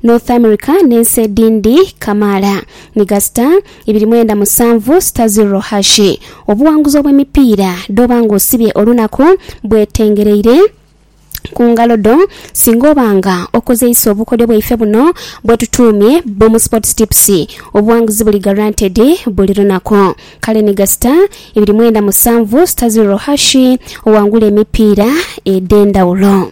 North America n'ensi edhindi kamaala. Migasita, ibiri mwenda musanvu sita zirro hashi, Obuwanguzi obw'emipiira dh'oba ng'osibye olunaku bwetengereire ku ngalo dho singa oba nga okozeisa obukodyo bwaife buno bwetutuumye Boom Sports Tips. Obuwanguzi buli guaranteed buli lunaku. Kale ni gasita, ibiri mwenda musanvu sita zirro hashi owangule emipiira edh'endhawulo.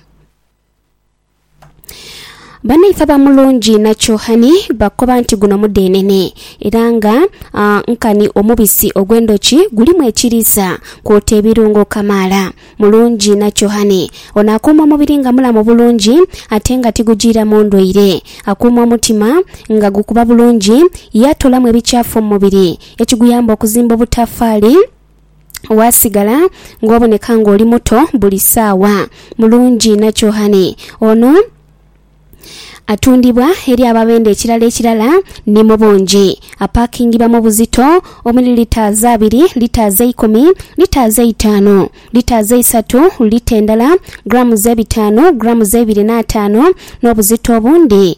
Banaife abamulungi na Kyohani bakoba nti guno mudeenene era nga ah, nkani omubisi ogw'endhoki gulimu ekiriisa kwota ebirungo kamaala. Mulungi na Kyohani ono akuuma omubiri nga mulamu bulungi ate nga tigujiiramu ndwaire. Akuuma omutima nga gukuba bulungi ye atoolamu ebikyafu mu mubiri ekiguyamba okuzimba obutafaali. waasigala ng'oboneka ng'oli muto buli saawa. Mulungi inha Kyohane ono atundhibwa eri ababendhe ekirala ekirala ni mu bungi. Apaakingibwa mu buzito omuli litres abiri, litres eikumi, litres eitaanu, litres eisatu, lita endala, grams ebitaanu, grams eibiri n'ataanu, n'obuzito obundi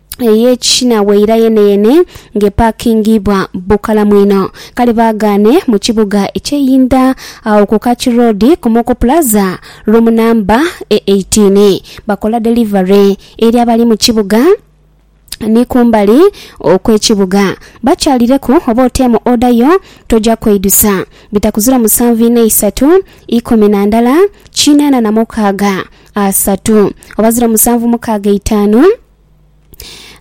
ey'ekishina waira yeneyene ng'epaakingibwa bukalamu inho. Kale baagaane mu kibuga eky'einda agho ku Kaki Road ku Moko Plaza, roomu namba e eighteen. Bakola delivery eri abali mu kibuga ni kumbali okw'ekibuga. Bakyalireku oba oteemu oda yo toja kweidusa. Bitakuzira musanvu ina isatu ikumi na ndala kinaana na mukaaga asatu oba zira musanvu mukaaga itaanu.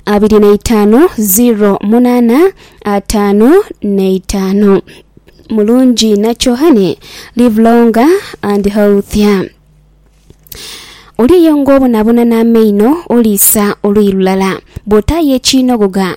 abiri na itaanu ziro munaana ataanu na itaanu. Mulungi nakyo honey live longer and healthier. Oli eyo ng'obonabona n'amaino oliisa oluyi lulala, bw'otaayo ekiinoghoga